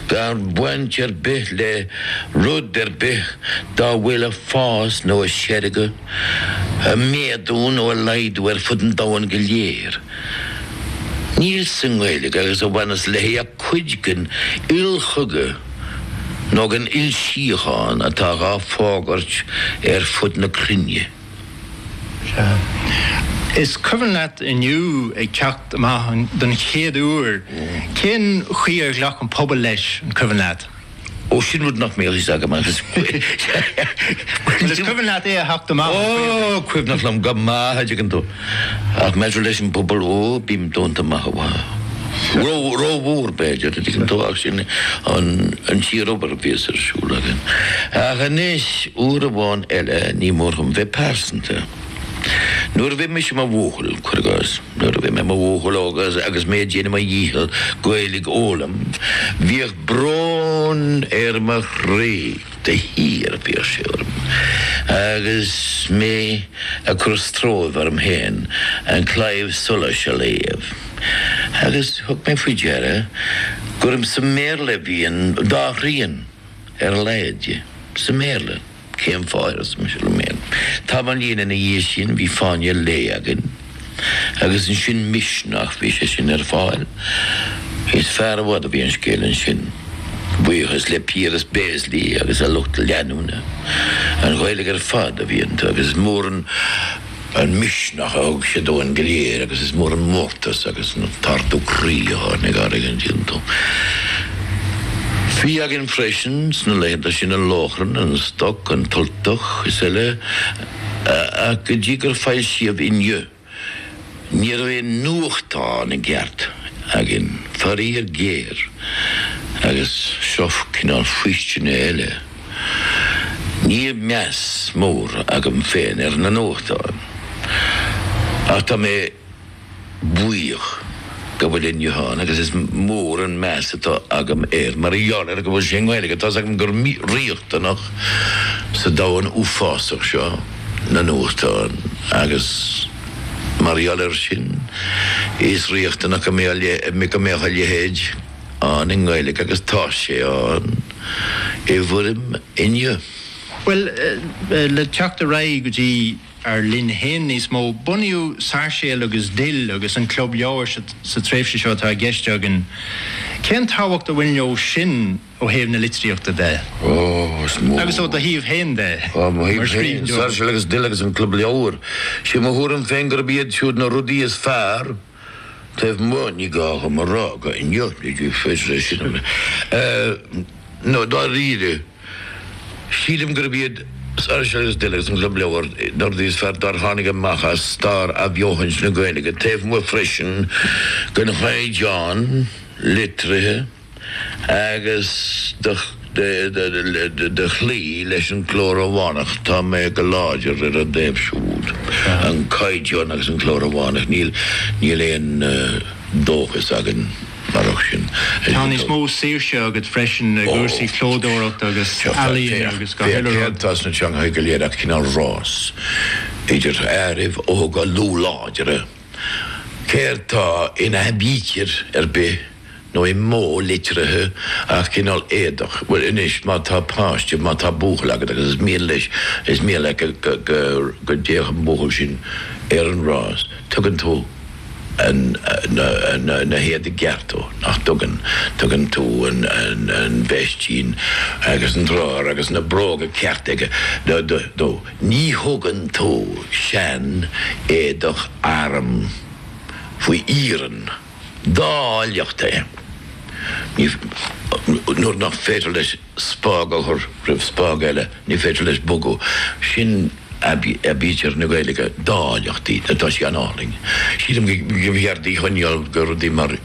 gan baint ar bith le rud ar bith dá bhfuil ag fás nó ag seirgeadh, ag méadú nó ag laghdú ar fud an domhain go léir. Níl sa nGaeilge agus a bhaineas léi ach cuid den ilchogadh nó den ilsíochán atá dhá fógairt ar fud na cruinne. Sea. Is cuimhin leat Inniu ag teacht amach don chéad uair. Cén chaoi ar ghlac an pobal leis, an cuimhin leat? Ó, sin rud nach mbíodh a fhios agam agus. Bhuel, is cuimhin leat é a theacht amach, an cuimhin? Ó, cuimhneach liom go maith, an dtuigeann tú. Ach maidir leis an bpobal, ó, bím dúnta amach is amach. Rómhór, b'fhéidir, an dtuigeann tú, ach sin an tsíorobair a bhíos ar siúl agam. Ach anois, uair amháin eile, ní mór dhom bheith pearsanta. Nuair a bhí mise i mo bhuachaill, cuir i gcás, nuair a bhí mé i mo bhuachaill óg agus mé ag déanamh mo dhícheall Gaeilge a fhoghlaim, bhíodh brón ar mo chroí. de shíor bhíodh sé orm agus mé ag cur stróibh orm féin An Claidheamh Soluis a léamh agus thug mé faoi deara gur sa mBéarla a bhí an dá thrian ar a laghad de, sa mBéarla. Cén fáth, arsa mise liom féin. Tamallín ina dhiaidh sin bhí Fáinne an Lae againn. agus ansin Misneach, bhí sé sin ar fáil. Is fearr i bhfad a bhí an scéal ansin, buíochas le Piaras Béaslaí agus a lucht leanúna. An Ghaeilge ar fad a bhí iontu agus is mór an misneach a thug sé dúinn go léir agus is mór an mórtas agus an t-ardú croí a tháinig orainn iontu. Bhí againn freisin sna laethanta sin An Lóchrann, An Stoc, An tUltach is eile. Ach go dtí gur foilsíodh Inniu, ní raibh aon nuachtán i gceart againn, faraor géar, agus seo cineál faoistine eile, níl meas mór agam féin ar na nuachtáin, ach tá mé. buíoch go bhfuil Inniu ann agus is mór an meas atá agam air mar gheall ar go bhfuil sé i nGaeilge. Tá's agam gur riachtanach sa domhan uafásach seo na nuachtáin agus mar gheall ar sin is riachtanach go mbeadh a leithéid ann i nGaeilge agus tá sé ann i bhfoirm Inniu. Bhuel, le teacht ar aghaidh go dtí. ár linn féin níos mó. Bunaíodh Sairséal agus Dill agus an Club Leabhar sa tréimhse seo atá i gceist againn. Cén tábhacht a bhain leo sin ó thaobh na litríochta de? Ó, is mór. Agus ó do thaobh féin de? Ó mo thaobh féin, Sairséal agus Dill agus an Club Leabhar. Sé mo thuairim féin gurb iad siúd na rudaí is fearr. taobh amuigh, ní gá dhom a rá go inniu, ní féidir é sin a nó dáiríre, sílim gurb iad Sáirséal agus Dill agus an Club Leabhar na rudaí is fearr dár tháinig amach as stair athbheochaint na Gaeilge, taobh amuigh freisin den chaighdeán litrithe. Agus de chloí leis an gcló Rómhánach, tá mé go láidir ar an dtaobh siúd, an Caighdeán agus an cló Rómhánach, níl, níl aon dóchas againn marach sin. Tá níos mó saoirse agat freisin i gcúrsaí clódóireachta agus ealaíne agus gach uile rud. Féach, féach, féach céard atá sna teangacha go léir ach cineál rás idir fhearaibh óga lúth láidre. Céard tá in aibítir ar bith nó i modh litrithe ach cineál éadach, bhuel anois má tá páiste, má tá buachaill agat agus is mian leis, is mian leat go dtéadh an buachaill sin ar an rás, tugann tú na héadaí gearra dó, nach dtugann? Tugann tú an veistín agus an drár agus na bróga cearta dó. Ní thugann tú seanéadach airm faoi iarann, dá áilleacht é, ní, nuair nach féidir leis spág a chur roimh spág eile, ní féidir leis bogadh, sin aibítir na Gaeilge, dá áilleacht í, tá sí an-álainn. Sílim go mb'fhearr í a choinneáil do rudaí mar.